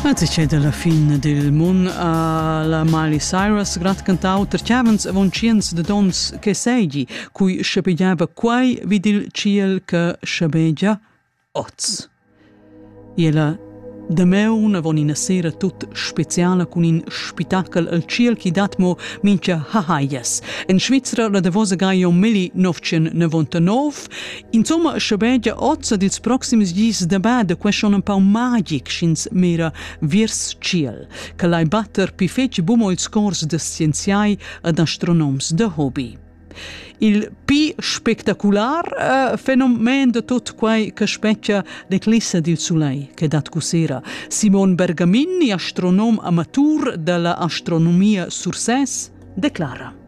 Mezichet alla fin dil mun a la Miley Cyrus grad cantau terchavens avon tschiens de dons che seigi, cui schebegiava quai vid il ciel che schebegia oz. Ella Dameun avon ina sera tut speciala cun in spitachel al ciel chi dat mo mincha hahaias. En Svizra la davosa Gaio Milli 1999 Insomma, schabegia gia oz ed ils proxims dis da bada quescha un pau magic sch'ins mira viers tschiel, che lai batter pi fetg bumo ils cors da scienziai ed astronoms da hobby. Il pi spectacular uh, fenomen de tot quai che specchia l'eclissa dil sulei che dat cusera. Simon Bergamin, astronom amatur della astronomia Sursès, declara.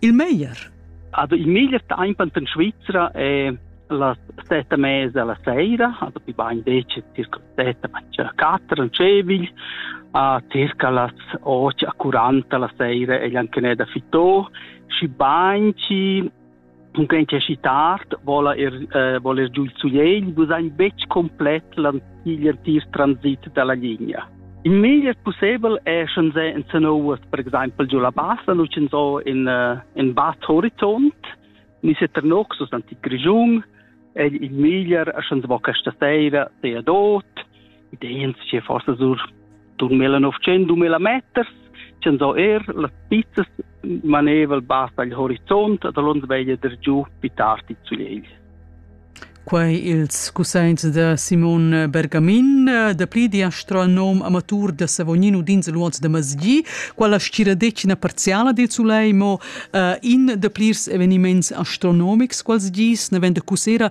Il meglier? Also il meglier temp in Svizzera è la sette mese alla sera, also die beiden decke circa sette, circa quattro, cevigl, a circa las 8 a 40 la sera e anche ne da fitò și banci un grenche si tard vola er eh, voler giù il suiel bu sein betg complet la igl artist transit dalla linea. Il meglier possibel è schon se in Sanowas, per exempel giù la bassa, nu c'en so in, uh, in Bad Horizont, ni se Ternoxus antic Grigiun, è il meglier a schon se vo questa sera, se a dot, ideens ce forse sur 2000-2000 meters chan so er las pizzas maneval bas agl horizont da l'ons veglia der giu pi tardi zu Liegl. Quei ils cusseins da Simon Bergamin, dapli di astronom amatur da Savognino dins l'uoz da Masgi, quella stiradecina parziala di Zuleimo, uh, in da plirs eveniments astronomics quals gis, ne vende cussera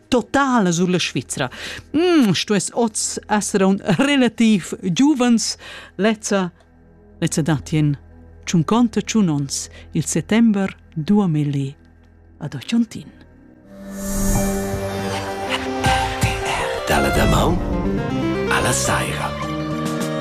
totala sulla Svizra. Mm, stuess oz essere un relativ giuvens, lezza, lezza datien Ciun conte ciun ons il settember 2000 ad Ochontin. Dalla damaun alla saira.